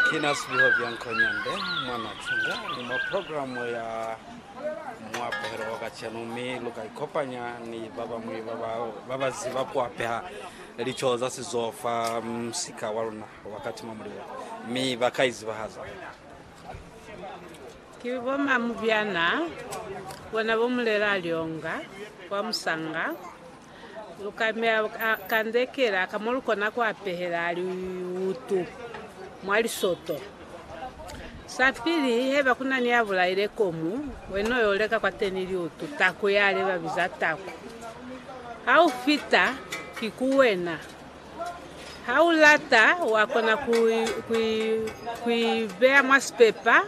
Kina Sibiho Byankonyande mwa Natsinga ni mwa programo ya muapehelo wa kacenu, mi luka ikopanya ni babañwi babaziba kuapeha lico za sizo fa musika waluna wa Katima Mulilo, mi baka izibahaza. Ki bo mamu byana bona bo mulela lyonga kwa musanga? Lu ka meya kandekela ka mo lu kona ku apehela liutu mwa lisoto. Sapili, haiba ku na ni ya bulaile komu, wena u yo leka kwateni liutu, taku yale ba biza taku. Ha u fita, ki ku wena. Ha u lata, wa kona ku i beya mwa sipepa.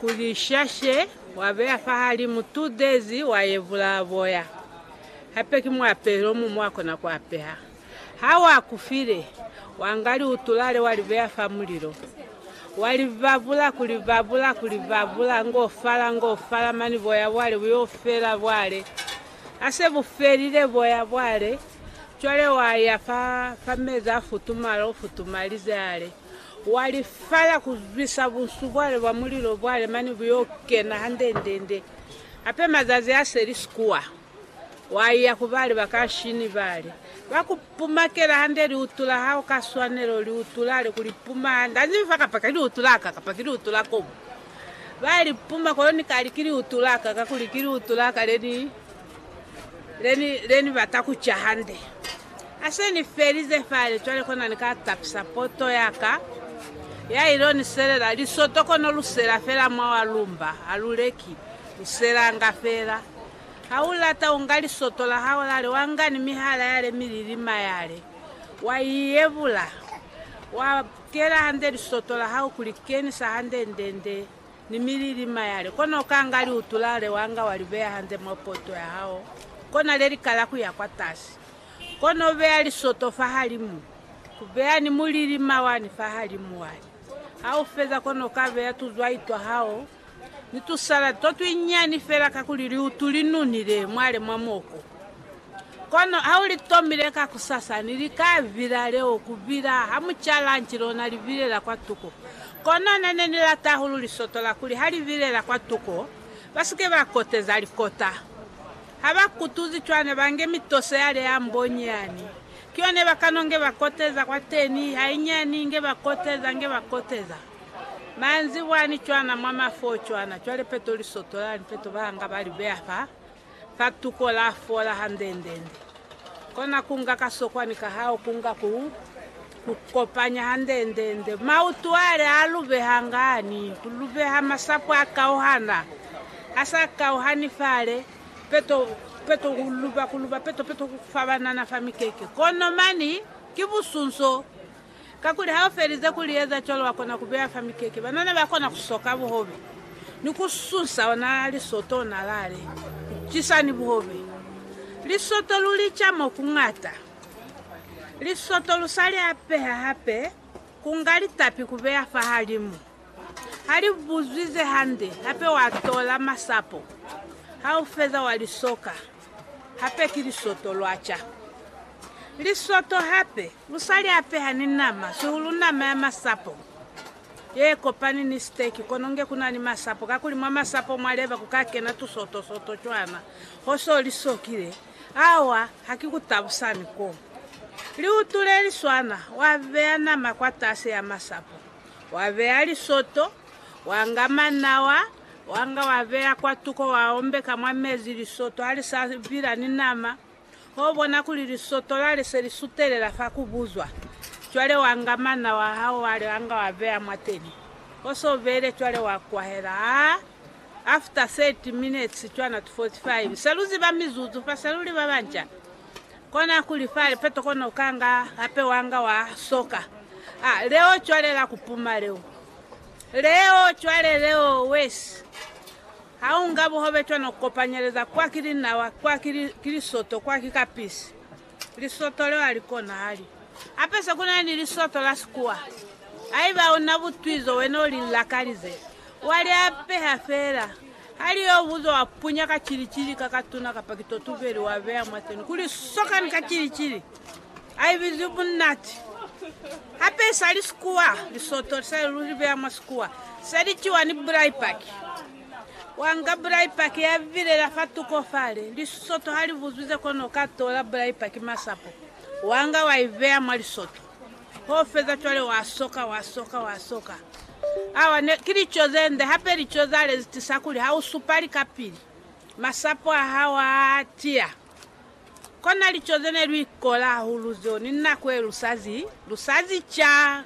Kuli shashe wa beya fahalimu two days wa yevula boya hape ki muapelo omuñwi wa kona ku apeha. Ha wa kufile, wa nga liutulale wa li beya fa mulilo. Wa li babula ku li babula ku li babula ngo fala ngo fala mani boya bwale bu yo fela bwale ha se bu felile boya bwale cwale wa ya fa fa mezi a futumala o futumalize ale. Wa li fala ku zwisa bunsu bwale bwa mulilo bwale mane bu yo kena handendende. Hape mazazi a seli sikuwa, wa iya ku bali ba ka nshini bale ba ku pumakela hande liutu la hao ka swanelo, liutu lale ku li puma hande. Ha zibi fa kapa ki liutu la ka kapa ki liutu la kobo. Ba li puma kono ni ka li ki liutu la ka kakuli ki liutu la ka le ni Leni, leni bata ku ca hande. Ha se ni felize fale, cwale kona ni ka tapisa poto ya ka, ya il'o ni selela lisoto kono lu sela fela mwa wa lumba, ha lu leki, lu selanga fela. Ha u lata, u nga lisoto la hao lale, wa nga ni mihala yale mililima yale, wa i yebula, wa kela hande lisoto la hao ku li kenisa hande nde, nde, Ni milili mayale, kono ukanga liutu lale wanga walibeya hande mwa poto yahao, kona lelikala kuya kwatasi. Kono ubeya lisoto fahalimu, ubeya ni mulili mawani fahalimu wali. Haufeza kono ukabeya tuzwai twahao ni tusaladi totwinyani fela kakuli liutu linunile mwale mwa moko. Kono ha u li tomile kakusasa, ni li ka vila leo ku bina ha mu ca lanci lona li bilela kwa tuko. Kono na ne ni lata hahulu lisoto la kuli ha li bilela kwa tuko, ba si ke ba koteza likota. Ha ba kutuzi cwana, ba nge mitoso ya le ya mbonyi yani. Ki yone ba kano nge ba koteza kwateni, hainyani, nge ba koteza, nge ba koteza. Manzibwani cwana, mwa mafoho cwana, cwale peto lisoto lani, peto ba nga ba li beya fa. Ka tuko la fola handendende. Kona ku nga kasokwani ka hao ku nga ku ku kopanya handendende. Mautu ale a lubeha ngani? Ku lubeha masapo a kauhana. A sa kauhani fale, peto, peto ku luba, ku luba, peto, peto ku fa banana fa mikeke. Kono mani ki busunso. Kakuli ha u felize ku li eza cwalo, wa kona ku beya fa mikeke. Banana ba kona ku soka buhobe ni ku susa ona lisoto ona lale ku cisa ni buhobe. Lisoto lu li ca mo ku ñata. Lisoto lu sa li apeha hape, ku nga litapi ku beya fahalimu. Ha li buzwi ze hande, hape wa tola masapo. Ha u feza wa li soka. Hape ki lisoto lwa ca. Lisoto hape Lu sa li apeha ni nama, sihulu nama ya masapo ye kopani ni siteki, kono nge ku na ni masapo, kakuli mwa masapo mwa leba ku ka kena tusoto-soto cwana ho so li sokile. Awa, ha ki ku tabusa ni ko. Liutu le li swana, wa beya nama kwatasi ya masapo, wa beya lisoto, wa nga manawa, wa nga wa beya kwatuko, wa ombeka mwa mezi, lisoto ha li sa vila ni nama. Ho bona kuli lisoto lale se li sutelela fa ku buzwa. Cwale wa nga mana wa hao wale wa nga wa beya mwateni. Ho se u beile cwale wa kwahela. Ha after 30 minutes cwana to 45, se lu ziba mizuzu fa se lu li ba banca. Kona kuli fa lipeto kona u kanga hape wa nga wa soka. Ha leo cwale la ku puma leo. Leo cwale leo wesi. Ha u nga buhobe cwana u kopanyeleza kwa ki linawa, kwa ki li, ki lisoto, kwa ki kapisi. Lisoto leo ha li konahali. Hape se ku na ni lisoto la sikuwa. Haiba u na butwi zo wena u li lakalize, wa li apeha fela. Ha li yo buzo wa punya ka cili-cili ka katuna kapa kitotuveli wa beya mwateni kuli sokani ka cili-cili. A i bizwi bunati. Hape sa li sikuwa, Lisoto li sa li luli beya mwa sikuwa. Se li ciwa ni bulai paki. Wa nga bulai paki ya bilela fa tuko fale. Lisoto ha li buzwize kono u ka tola bulai paki masapo. Wa nga wa i beya mwa lisoto. Ho feza cwale wa soka, wa soka, wa soka. Awa ne, ki lico ze nde, hape lico za lezi tisa kuli ha u supali kapili, masapo a hao a tiya. Kona lico ze ne lu ikola hahulu zeo ni nako ye lu sa zi, lu sa zi ca.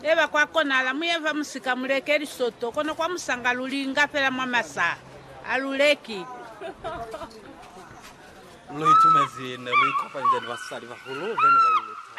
Eba kwa konahala mu ye fa musika mu leke lisoto, kono kwa musanga lu li inga fela mwa masaha. Ha lu leki. Lu itumezi ne lu ikopanzya ni basalibahulu be ne ba lu luta.